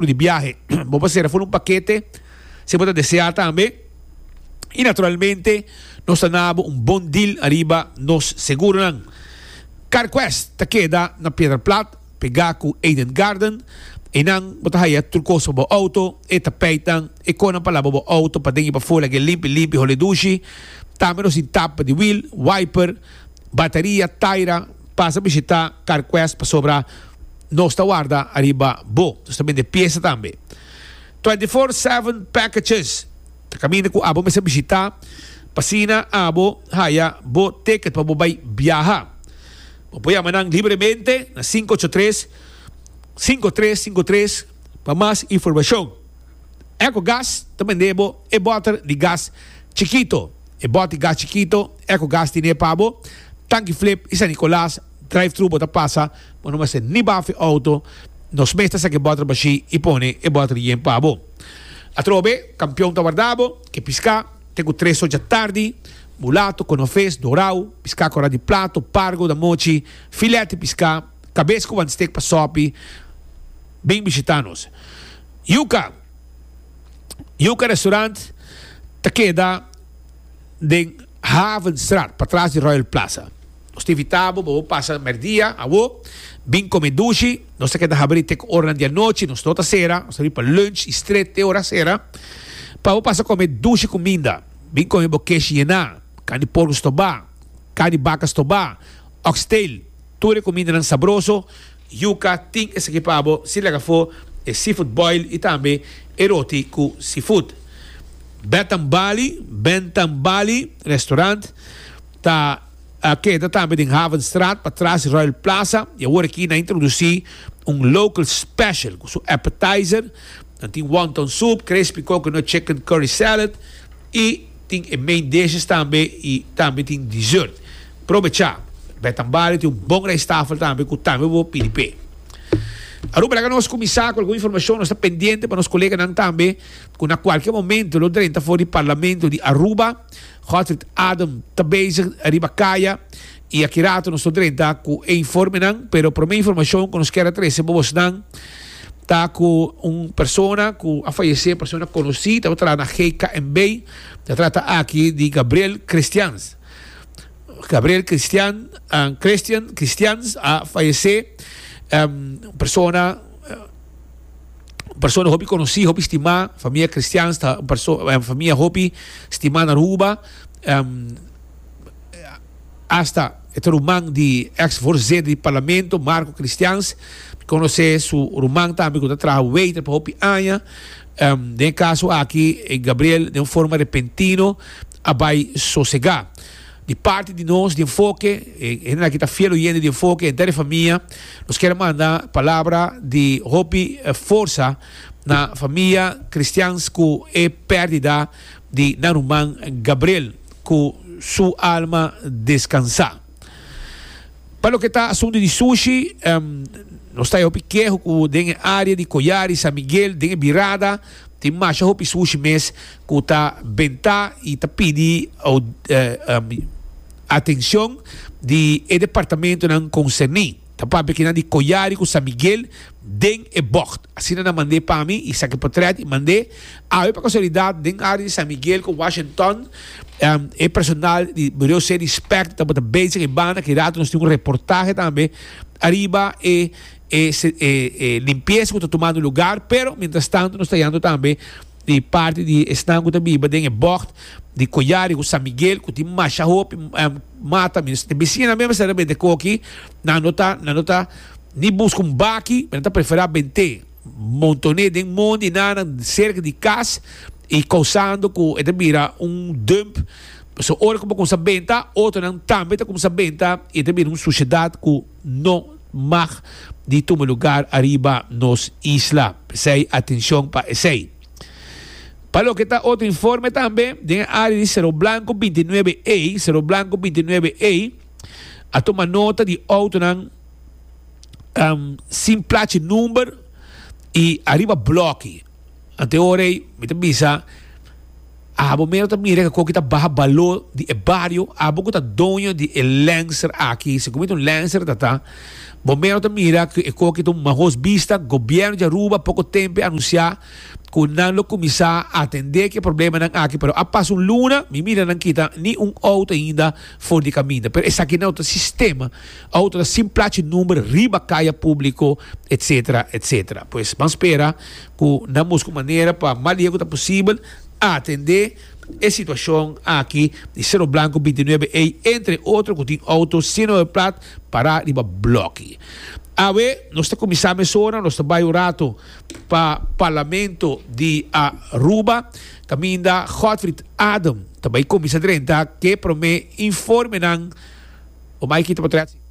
Plu di biahe, bo por serra for un pakete si bo ta deseá tambe. I naturalmente nos ta nabo un bon deal ariba nos seguronan. CarQuest ta keda na Piedra Plat, pegá ku Eden Garden. Einan bo ta haya tur kos pa bo outo, e tapijtnan, e konan pa laba bo outo paden i pafó laga e limpi limpi hol'e dushi. Tambe nos tin tapa di wiel, wiper, bataria, taira, Pasa bishita Carquest pasobra nos ta warda ariba bo. Nos ta bende piesa tambe. Twenty Four Seven Packages ta kaminda ku abo mester bishita pa asina abo haya bo ticket pa bo bai biaha. Bo por yama nan libremente na sinku ocho tres, sinku tres sinku tres pa mas informashon. Ecogas ta bende bo e bòter di gas chikito. E boti gas chikito, eco gas tin e pa bo, tanki flip y San Nicolas drive thru bo ta pasa bo no mester ni baf e auto, nos mes ta saca e boter bashi y pone e boter yen pa bo. Atrobe, campeon ta warda bo, ke pisca, te cu tres ocha tardi, mulato, conofes, dorao, pisca cora di plato, pargo da mochi, filet y pisca, cabes cu wantsteak pa sopi, bin bishita nos. Yuca! Yuca Restaurant ta keda den Havenstraat, patras di Royal Plaza. Nos ta invita bo, bo pasa merdia awo, bin come dushi. Nos ta keda habri te ku oranan di anochi, nos no ta sera. Nos ta habri pa lunch i stret te ora sera, pa bo pasa come dushi cuminda. Bin come bo kesh yena, carne di porco stobá, carne di baca stobá, oxtail, tur e cumindanan sabroso. Yuca tin esaki pa bo si laga fo e seafood boil y tambe e roti cu seafood. Bed and Bali, Bent and Bali, restaurant ta a keda tambe den Havenstraat pa tras di Royal Plaza y awor aki nan introduci un local special cu su appetizer nan tin wonton soup, crespy coconut chicken curry salad y. Tin e main dishes tambe y tambe tin dessert. Probecha! Bath and Body tin un bon rijsttafel tambe cu tambe bo pidi p'e. Aruba laga nos cuminsa cu algun informacion. Nos ta pendiente pa nos coleganan tambe cu na cualkier momento lo drenta for di Parlamento di Aruba. Godfried Adam ta bezig riba caya. I aki rato nos ta drenta ku e informenan, pero promé informashon ku nos kier a trese pa bosnan ta ku un persona ku a fayesé, persona konosí, tabata traha na GKNB. Ta trata aki di Gabriel Christians. Gabriel Christian, Christian, Christians a fayesé, un persona, un persona hopi konosí, hopi stimá, famia Christians ta un perso-, famia hopi stimá na Aruba. Asta e ta ruman di ex voorzeder di Parlamento, Marco Christians, conoce su ruman tambe cu ta traha waiter pa hopi aña. Den e caso aki Gabriel den un forma repentino a bay sosega. Di parti di nos di Enfoke, e hende aki ta fiel oyente di Enfoke, henter di famia, nos kier manda palabra di hopi forsa na famia Christians cu e perdida di nan ruman Gabriel. cu su alma descansa. Pa loke ta asuntu di sushi, nos ta e hopi keho cu den e area di Collar y San Miguel den e birada tin masha hopi sushi mes cu ta benta y ta pidi atencion di e departamentonan concerni. Ta papia kinan di Coyari cu San Miguel den e bocht. Asina nan mand'é pa mi, i saki potret i mand'é. Awe pa casualidad den área di San Miguel cu Washington e personal di Bureo C di Spect tabata bezig e banda ki rato nos tin un reportahe tambe ariba e e limpieza cu ta tumando lugar pero mientras tanto nos ta yendo tambe di parti di esnan ku ta biba den e bòkt di Coyari ku San Miguel ku tin masha hopi mata mi no bisina mi a mester a bini ta koki nan no ta nan no ta ni buska un baki mi nan ta prefera bent'e monton'e den mon di nan nan serka di kas i kousando ku e ta bira un dump so ora ku bo kuminsa benta otronan tambe ta kuminsa benta i ta bira un sushedat ku. no mag di tuma lugar ariba nos isla. P'esei atencion pa esei. Pa loke ta otro informe tambe, den e area di Cerro Blanco binti nuebe A, Cerro Blanco binti nuebe A, a tuma nota di autonan sin plachi number y ariba bloki. a te ora ei mi ta bisa abo mero ta mira kiko ki ta baha balo di e bario abo ku ta doño di e lènster aki si komo itu lènster ta ta bo mero ta mira ku e koki ta un mahos bista gobièrnu di Aruba poko tempu a anunsiá ku nan lo kuminsá atendé ki e problemanan aki pero a pasa un luna mi mira nan kita ni un outo ainda for di kaminda pero esaki nan ta sistema outo ta sin plachi number riba kaya públiko etsetera etsetera pues ban spera ku nan busca manera pa mas lihe ku ta posibel atende e situacion aki di Cerro Blanco binti nuebe ey, entre otro ku tin auto sino e plat para riba bloki. Awe nos ta kuminsá mesora, nos ta bai un ratu pa Parlamento di Aruba, kaminda Godfried Adem ta bai kuminsá drenta ke prome informenan, Omaiki ta por trae.